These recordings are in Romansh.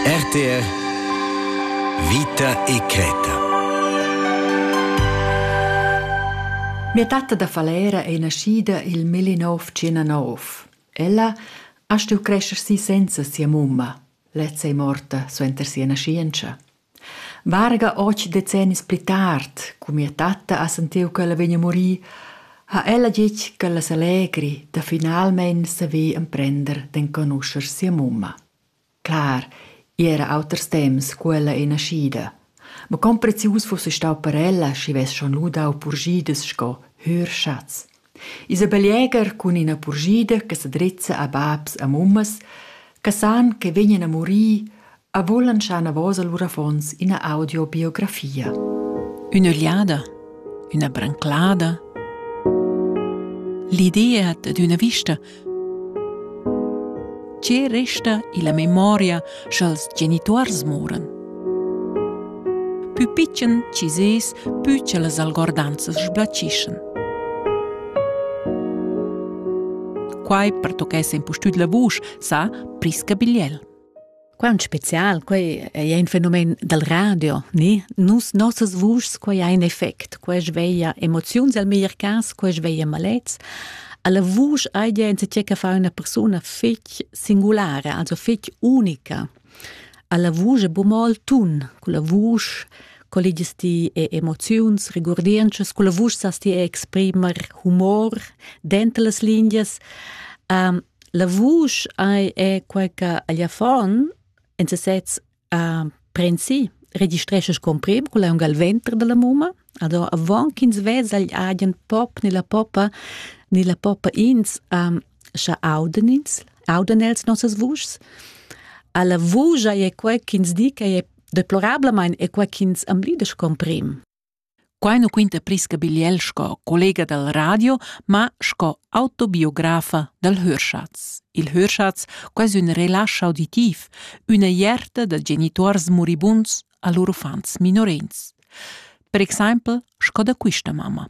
RTR Vita e cretta Mia tatta da Falera è naschida il 1909. Ella ha stuiu crescer si senza sia mumma. Lezza è morta suenter sia naschientscha. Varga otg decennis pli tard, cu mia tatta ha sentiu ch'ella vegn a murir, ha ella detg ch'ella s'allegri da finalmein saver emprender d'enconuscher sia mumma. Clar, igl era auters temps cu ella ei naschida, ma con prezius fuss ei stau per ella, schi vess schon lu dau purschidas sco hür schatz. Isabel Jäger cun ina purschida che sa drizza a babs e mummas che san che vegnan a murir e vulan schar enavos a lur affons ina audiobiografia. Ün'ögliada, üna branclada. L'idea dad üna vista Tge resta illa memoria scha'ls genituors moran? Pü pitschen chi sez, pü cha las algordanzas sblachischan. Quai pertochess impustüt la vusch, sa Prisca Bigliel. Quant spezial, quei ei ein fenomen dal radio, ni? Nus nossas vuschs, quei ha in effect, quei sveglia emoziuns el meglier cas, quei sveglia malets. Alla vusch hai ja enzatgé che fa una persona fetg singulara, also fetg unica. Alla vusch è bu mo il tun, con la vusch colligias ti e emoziuns, regurdientschas, con la vusch sas ti exprimer humor dentro las linguas. Um, La vusch ei è quei che agl affon en sesez ha prensi registresces con prim con aunc al venter dalla mumma ado avon ch'ins vesa agl agen pop ni la poppa ni la poppa ins um, scha auden ins auden els nossas vuschs alla vusch ei quei ch'ins di che è deplorablamain è quei ch'ins amblides con prim Quai nu quinta Prisca Bigliel sco collega dal radio, ma sco autobiografa dal Hörschatz. Il Hörschatz quais ün relasch auditiv, üna ierta da genituors muribunds a lur uffants minorins. Per exaimpel sco da quista mamma.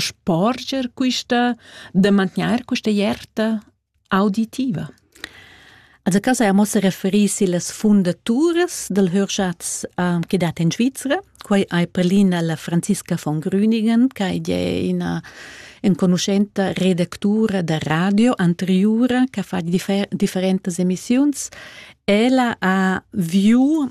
sporger quista, da mantgnair questa ierta auditiva? Also casa amo se referir sillas fundaturas del Hörschatz uh, che dat in Svizzera. Quai hai prelina la Franziska von Grüningen, che è una enconuschenta redactura da radio anteriore che fa differ- differentes emissioni. Ella ha viu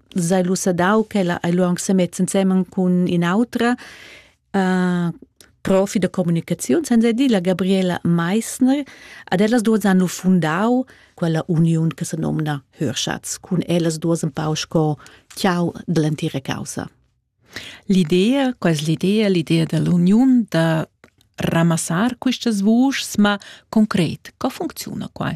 sei lu sadau ch'ella ei lu aunc semezza ensemen cun in'autra uh, profi da comunicaziun, senza dir la Gabriela Meissner. Ad ellas duas han lu fundau quella uniun che se nomna Hörschatz, cun ellas duas un pau sco ciao dell'entira causa. L'idea, qual l'idea, l'idea dell'uniun da ramassar questas vuschs, ma concret, co funziona qua?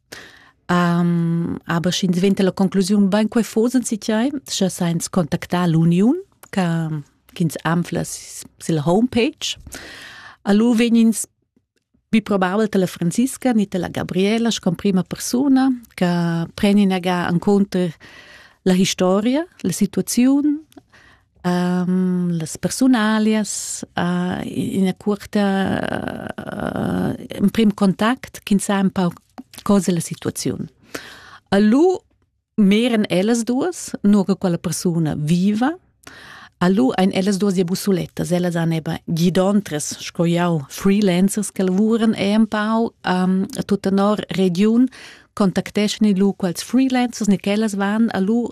Aber sch'ins venta la conclusiun, bain quai fosan si tiai, scha sainz contactar l'uniun ch'ins anfla sil homepage. Allu vegnins pi probabel tala Franziska, ni tala Gabriela, sco prima persuna, che preni naga an conter la historia, la situaziun, las persunalias ina cuorta emprim contact ch'ins sa un pau cosa la situaziun. A lu meran ellas duas, nur che quella persuna viva. A lu ein ellas duas ja busulettas, ellas han eben gidontres, sco jau, freelancers che lavuran e un pau um, a tutta nor regiun, contacteschan lu quels freelancers ni ch'ellas van a lu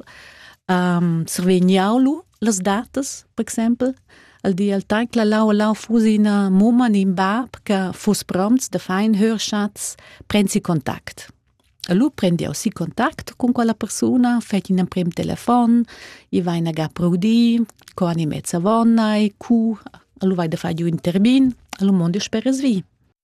um, survegniau lu las datas, per exempel, al di al temps che lau lau fusi ina mumma in in bab che fuss prompts da fein hörschatz, prensi contact. Allora prendi aussi contact con quella persona, fai un prim telefon, i vai in aga proudi, co animez avonnai, cu, allora vai da fare un termin, allora mondo speres vi.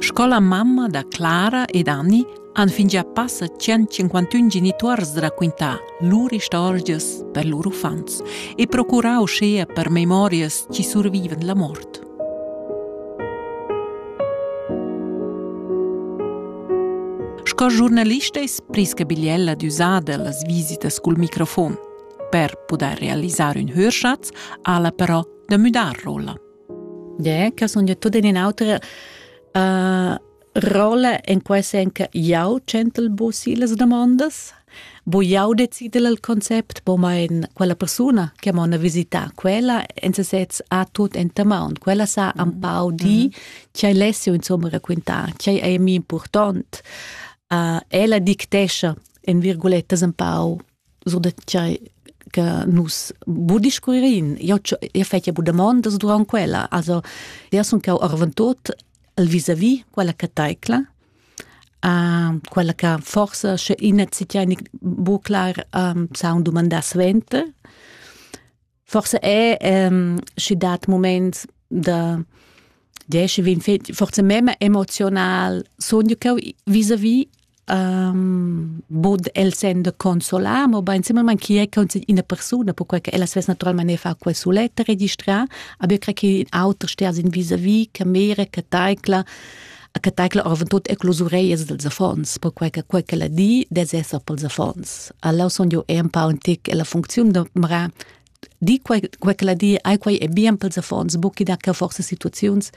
Scola mamma da Clara ed Anni han fingià passa 151 genituors raquintà lur istorgias per lur uffants e procurà uschea per memorias chi survivan la mort. Sco giornalista es Priska Bigliella d'üsada las visitas cul microfon. Per pudair realisar ün hörschatz ha'la però da müdar rolla? Yeah, che sun io tut in un'altra uh, rolla in quai sen che jau centelbusi las domandas, bo jau decide il concept, bo mein quella persona che m'ha visita, quella en se sez ha tut in tamon, quella sa un pau di mhm. che lessi insomma raccontare, che è mi important. Uh, ella dictescia in virgulettas un pau sur da tgei che nus bu discuirin. Io io fetja bu damondas durant quella. Also, io sun cau arventot al vis-a-vis quella che taicla. Uh, quella che forse sche in hat bu clar um, sa un domandar svente. Forse è ehm, schi dat moment da diesch vin fet forse mem emozional sogn cheu vis-a-vis um, bod el send consolar, mo bain similmente chi è una persona, perché che ella svess naturalmente fa quel suletta registrare, aber ich kriege auter stehen sind vis-à-vis, che mere, che taikla, che tecla orvon tut e clusureias dels affons, perquei che quei che la di des esser pels affons. Allora son jo un pa un tic la funziun de mara di quei, quei che la di ai quei è bien pels affons, bucchi da che forse situaziuns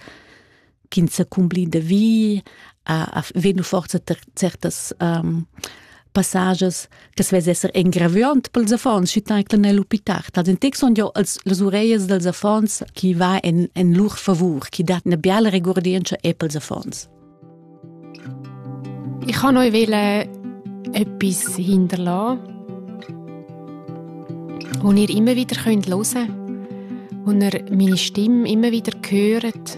kin se cumbli de vi, a, a venu forse certas um, passages che svess esser engraviant pels affons, schi taicle nel hospital. Tad in text son jo als las ureias dels affons chi va in, in lur favur, chi dat una biala regordienza e pels affons. Ich kann euch wollen etwas hinterlassen, und ihr immer wieder hören könnt und ihr meine Stimme immer wieder hört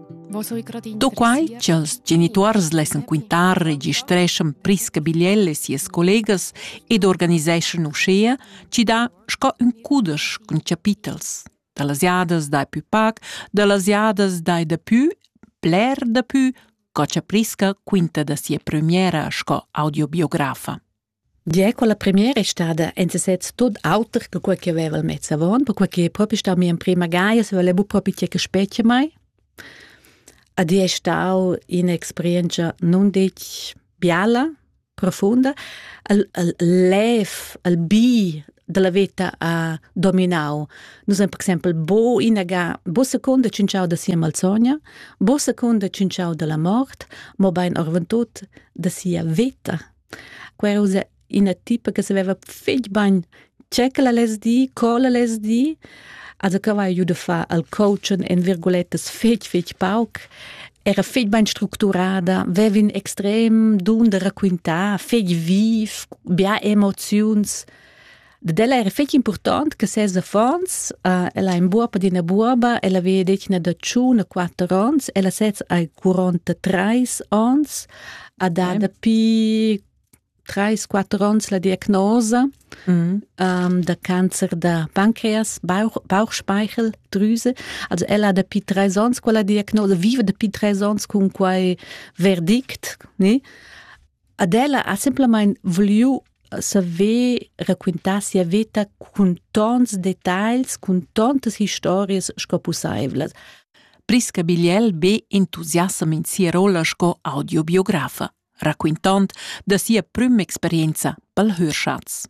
Do quai ch'ils genituors lessan quintar, registreschan Prisca Bigliel e sias collegas ed organiseschan uschea chi dà sco ün cudesch cun chapitels da las jadas dai pü pac, da las jadas dai dapü, bler dapü, co cha Prisca quinta da sia premiera sco audiobiografa. Gie, quella premiera è stada en sesez tut auter che quella che aveva mezz avon, perquei che è propi stau mia emprema gaia, se voleva propi tgei che spetga mai. Ed è stau un'experienza non detg biala, profunda. Il, il lev, il bi della vita ha dominau. Nus haben per exempel bo inaga, bo seconda cinciau da sia malsogna, bo seconda cinciau della mort, mo bein orventut da sia vita Quella ussa ina tipa che saveva fetg bain tge ch'ella less dir, co ella less dir. Also che aveva giu da far al coaching en virguletas fetg, fetg pauc. Era fetg bain structurada, veva in extrem dun da raquintar, fetg viv, bia emoziuns. Dad ella era fetg important che ses affons, uh, ella ha in buob ad ina buoba, ella veva detg ina da tschun a quatter onns, ella sez hai 43 onns, ha da dapi 3-4 onns la diagnosa mm. um, da cancer da pancreas, Bauch, Bauchspeichel, Drüse. Also ella ha dapi drei onns quella diagnosa, vive dapi drei onns cun quei verdict, ne? Ad ella ha semplamein vuliu saver raquintar sia veta cun tons detagls, cun tontas historias sco pusseivlas. Prisca Bigliel be entusiassam in sia rolla sco audiobiografa, raquintond da sia prüm experienza pel Hörschatz.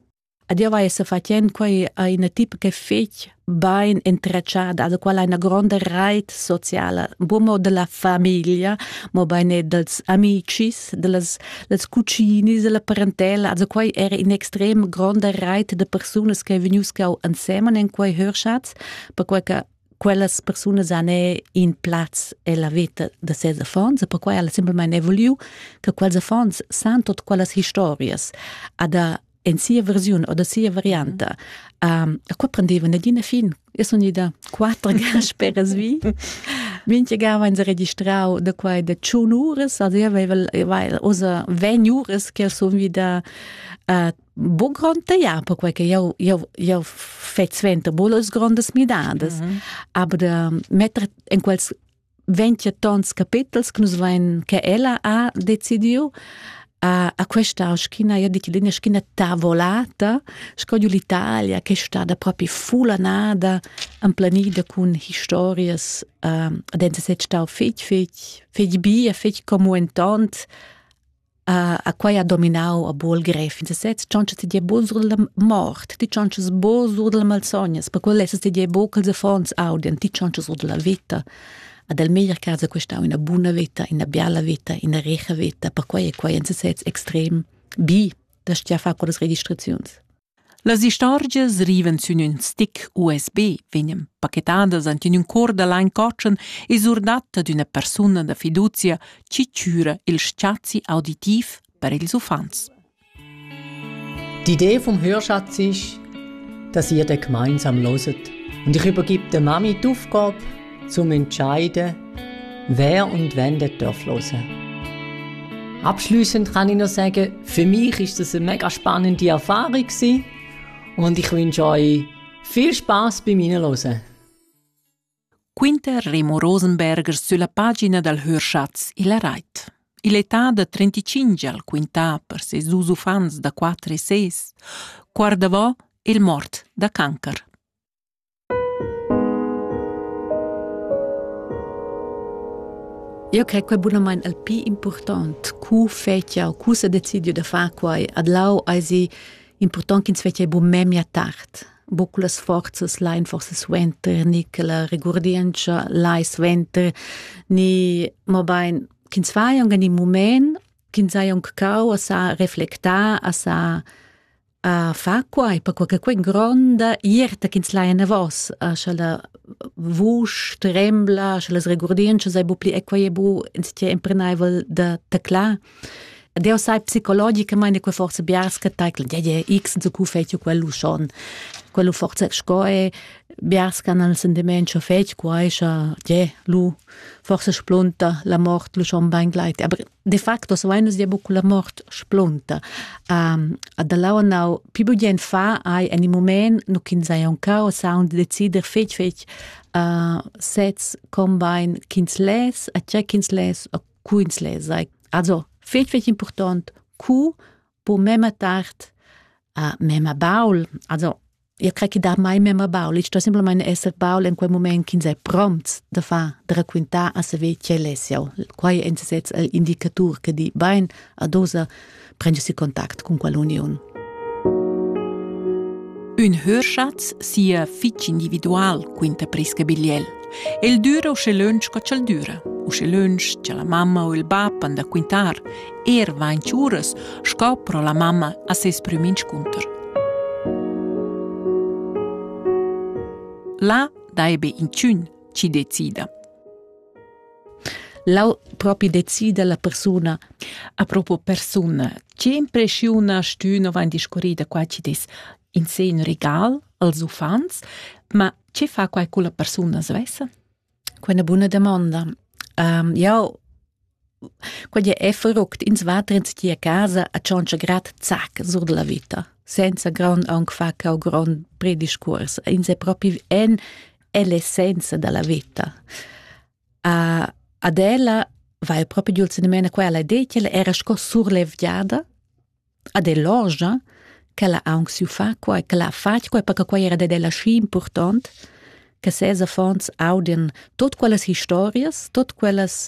Ed io vai sa fatend quai a ina tipa che fetg bain entretschada, da quella ha ina gronda reit sociala, buca mo della famiglia, mobein er dels amicis, dellas dels cucinis, della parentela. Also quai era in extrem gronda reit de persunas che vegnius cau ensemen en quei Hörschatz, perquei che quellas persunas han in plaz ella veta da ses affons e perquai ha semplamain evoluiu che quels affons san tot quellas historias. Ad en sia versiun oder sia varianta. Um, a qua prendeva nagina fin. Eu sun ida quattro gas peras vi. Minchia gava ens registrau da quai da tschun uras, also io aveva osa vegn uras che sun vida uh, bu gronda, ja, perquai che eu, eu, eu fetg sventa bolas grondas midadas. Mm -hmm. Aber da metter in quels ventia tons capitels che nus vein che ella ha decidiu a, a questa schiena, io dico linea schiena tavolata, sco giù l'Italia che è stata proprio fulanada, emplanida con historie uh, ad ente se stau fetg fetg fetg bia fetg comu entont a quai ha dominau a buol gref in sesez tschontscha ti dir bo sur della mort ti tschontscha bo sur della malsognas per quel lesses ti dir bo che els affons audian ti tschontscha sur della vita ad el meglier casa questa una buna vita una biala vita una recha vita per quai è quai in sesez extrem bi da stia fa con las registraziuns Las istorgias rivan sün ün stick USB, vegnan pachettadas ant in ün cor da lain cotschen e surdatta d'üna persuna da fiduzia chi chüra il spazi auditiv per ils uffants. D'Idee vom Hörschatz ist, dass ihr den gemeinsam loset und ich übergebe der Mami die Aufgabe, zum Entscheide, wer und wenn der darf hören. Abschließend kann ich noch sagen, für mich ist das eine mega spannende Erfahrung gewesen und ich wünsche euch viel Spaß beim Hinhören. Quinter Remo Rosenberger sulla pagina dal Hörschatz il Rait. L'età de 35 al quintà per ses dus uffants da 4 e 6 guardavò il mort da cancer. Eu cre que bunamaing il pii important cu fetsch jau, cu s'ha decidiu da far quai. Adlau esi important ch'ins fetschia buc memia tard. Buc cu las forzas lain forsa suenter, ni che la regurdientscha lai suenter, ni mobain ch'ins fai aunc in mument, ch'ins hai aunc cau a sa reflectar, a sa a fa quai per quai che quei gronda ierta ch'ins lai enavos sche la vusch trembla sche las regurdientschas ei bu pli equai e bu ins ti emprenaivel da teclar Deo sai psicologicamente che forse biars che taikln ja ja x so cu fetio quello schon quello forse scoe biars che hanno il sentimento fetio quai scha ja lu forse splunta la mort lu schon bein gleit aber de facto savain nus dir buc la mort splunta. Um, ad lau nau pi bugien fa hai en il moment nu kin sai un cao sound decider fetg fetg uh, sets combine kins les a che kins les a kuins les sai also fetg fetg important ku po mema tard uh, mema baul also Eu cre chi dà mai memma baul. Il sto simplamaing esser baul in quel mumaint ch'ins è prompts da far, da raquintar a saver quel es jau. Quai è in sesez il indicatur che di bain ad osa prendersi contact cun quell'uniun. Ün hörschatz sia fich individual quinta Prisca Bigliel. El düra usche lönch co ch'el düra. Usche lönch cha la mamma u il bap han da quintar er vain tschüras sco pro la mamma a seis prüm inscunter. Là daibe inchün chi decida. Lau propi decida la persuna a proprio persuna. Che impressiona stüno vain discorrida qua ci dis in sen regal als uffants, ma che fa quai cu la persuna svessa? quella buna damonda. Um, jau quegl è verruckt ins va trens ti a casa a tschontscha grad zac sur della vita senza grond aunc fa cau grond prediscurs ins è propi en l'essenza della vita a ad ella va il proprio giulzimena quella de che era sco surlevgiada ad ell'orgia ch'ella ha aunc siu far quei ch'ella ha fatg quei perche quei era dad ella schi impurtont che ses affons audien tot quellas historias, tot quellas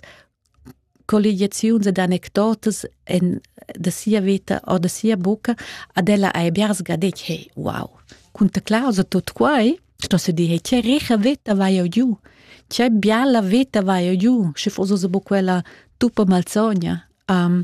colligiaziuns ed anecdotas en da sia veta o da sia bucca ad ella hai biars ga detg hey wow cun ta clausa tot quei sto se dir hey che richa veta vai eu giu che biala veta vai eu giu sche fos osa bu quella tuppa malsogna um,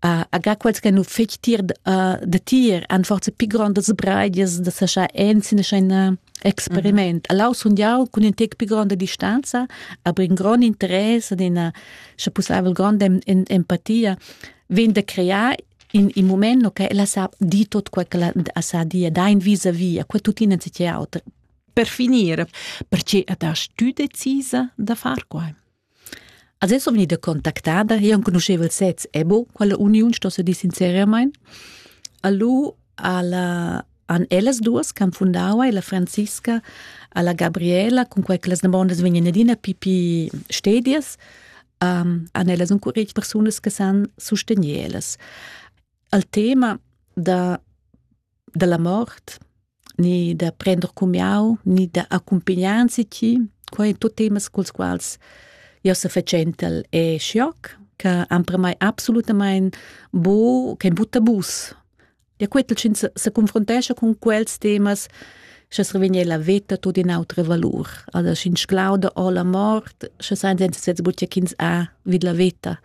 aga quels che nu fich tier da tier han forza pi grondas breidias da sa scha enzin ein experiment. Mm -hmm. Allau sun jau cun in tec pi gronda distanza, aber in grond interesse ed ina scha pussaivel gronda empatia vegn da crear in, in moment no, che ella sa di tot quel che la sa dia, da in vis a via, quel tuttina si auter. Per finire, perché da stu decisa da far quai? Als es ò vegnida contactada e enconuscheva il sez Ebo, quella uniun sto se dir sinceriamaing. Allu alla han ellas duas ch'han fundau e la Franziska alla Gabriela, cun quei che las damondas vegnan adina pipi stedias, um, han ellas un curich persunas che san sustegner ellas. Al tema da, dalla mort ni da prender cumiau, ni da accumpagnanzi chi. Quei ein tut temas culs quals jeu sefatschentel e schioc, che han per mei absolutamain bu, kein bu tabus. Ja quetel schin se, se confrontescha con quels temas, sche se revegne la veta tot in autre valur. Also schin sclauda o la mort, sche sein senza sez butia ch'ins ha vid la veta.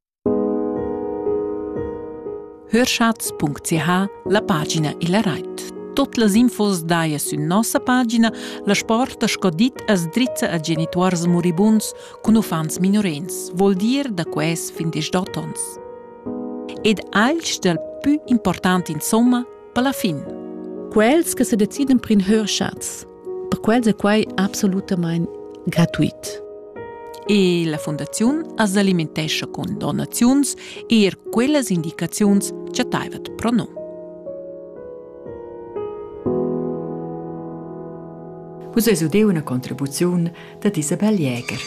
Hörschatz.ch la pagina illa rait. Tot las infos daja sün nossa pagina, la sporta sco dit as drizza a genituors muribunds cun uffants minorenns, vol dir da quels fin desch-dot ons. Ed alch dal pü important insomma per la fin. Quels che se deciden prin Hörschatz Per quels è quai absolutamain gratuit. E la fundaziun as alimentescha cun donaziuns, eir quellas indicaziuns chattaivat pro no. Vus es udeu üna contribuziun da Isabel Jäger.